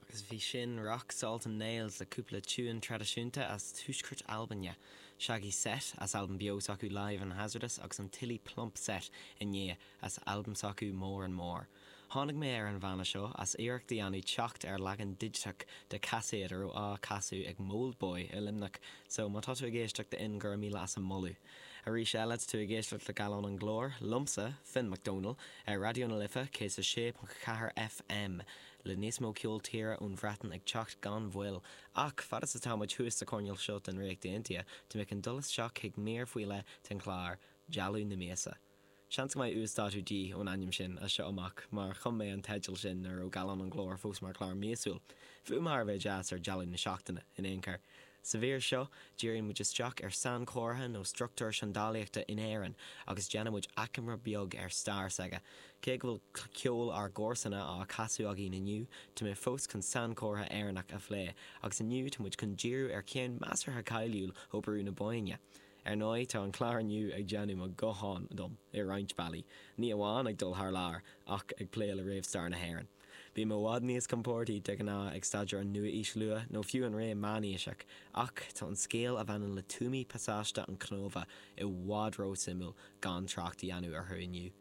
Agus bhí sin Rock, Salt and Nails le cúpla tiúin traidisiúnta as Tuaisceart Albaine, Shaggy Set as albam beo s'acu Live and Hazardous agus an Tilly Plump Set i ndiaidh as albam s'acu More and More. Tháinig mé ar an bhanna seo as iarracht a dhéanamh teacht ar leagan digiteach de caiséad a raibh á casadh ag Mold Boy i Luimneach so má tá tú ag éisteacht Ian go raibh míle as a moladh. Arís eile tá tú ag éisteacht le Gallán an Ghlóir, liomsa, Finn Mac Dónaill, ar Raidió na Life 106.4 FM, le níos mó ceol tíre ón Bhreatain ag teacht gan mhoill, ach fad is atá muid thuas sa choirneál seo den Ríocht Aontaithe, tá mé chun dul isteach chuig mír faoi leith den chlár, Dealú na Míosa. Seans go mbeidh uasdátú díth ón ainm sin as seo amach, mar chum mé an teideal sin nuair a bhí Gallán an Ghlóir fós mar chlár míosúil. Fuaim thar a bheith deas ar dealú na seachtaine, in aon chor. Sa mhír seo, díríonn muid isteach ar sainchomhartha nó struchtúr seandálaíochta in Éirinn agus déanann muid achoimre beag ar stair s'aige. Cé go bhfuil ceol ár gcomharsana á chasadh againn inniu, tá mé fós chun sainchomhartha Éireannach a phlé, agus inniu tá muid chun díriú ar cheann measartha cáiliúil ó Bhrú na Bóinne. Ar ndóigh, tá an clár inniu ag déanamh neamhghnách dom i roinnt bealaí, ní amháin ag dul thar lear ach ag plé le réamhstair na hÉireann. Bím i bhfad níos compórdaí de ghnáth ag staidéar an Nua-Aois Luath nó fiú an Ré Meánaoiseach, ach tá an scéal a bhaineann le tuamaí pasáiste an Chnóbha i bhfad ró-suimiúil gan trácht a dhéanamh orthu inniu.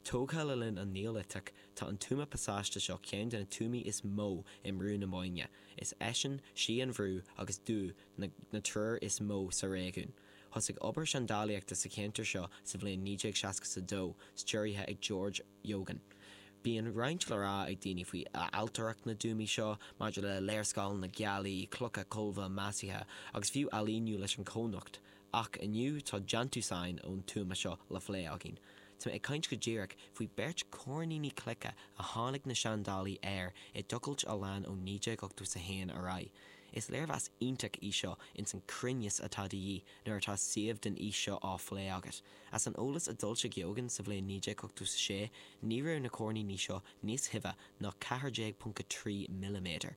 Tógtha le linn an Neoiliteach, tá an tuama pasáiste seo ceann de na tuamaí is mó i mBrú na Bóinne. Is eisean, Sí an Bhrú agus Dubhadh na triúr is mó sa réigiún. Thosaigh obair seandálaíochta sa cheantar seo sa bhliain 1962 stiúrtha ag George Eogan. Bíonn roinnt le rá ag daoine faoi ailtireacht na dtuamaí seo, maidir le léarscáileanna gealaí, clocha colbha maisithe, agus fiú ailíniú leis an cónocht, Ach inniu tá déantúsáin ón tuama seo le phlé againn. Tá mé ag caint go díreach faoi beirt coirníní cloiche a tháinig na seandálaí air i dtochailt a lean ó 1981 ar aghaidh. Is léargas iontach í seo ins an cruinneas atá de dhíth nuair atá suíomh den aois seo á phlé agat. As an eolas a d'fhoilsigh Eogan sa bhliain 1986 ní raibh na coirníní seo níos tuibhe ná 14.3 milliméadar.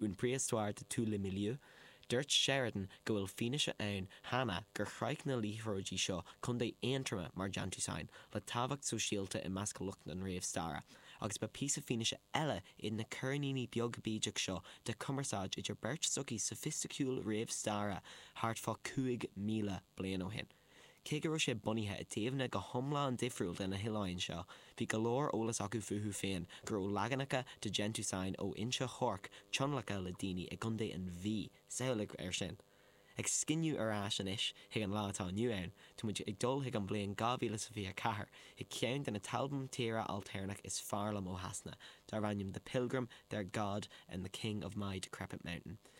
une préhistoire de tous les milieux'. Dúirt Sheridan go bhfuil fianaise ann cheana gur shroich na liathróidí seo contae Aontroma mar déantúsáin le tábhacht sóisialta i measc lucht an réamhstaire, agus ba píosa fianaise eile iad na coirníní beag bídeach seo de chumarsáid idir beirt sochaí soifisticiúil réamhstaire thart fá 5,000 bliain ó shin. Cé go raibh sé bunaithe i dtaobhanna go hiomlán difriúil de na hoileáin seo, bhí go leor eolas acu fúthu féin go raibh leaganacha de Gentusign ó Inse Orc tionlactha le daoine i gContae an Mhí, samhlaigh air sin! Ag scinneadh ar ais anois chuig an lá atá inniu ann, tá muid ag dul chuig an bhliain 2024 chuig ceann de na t-albam tíre ailtéarnach is fearr liom ó Shasana, darb ainm The Pilgrim, Their God, and The King of My Decrepit Mountain.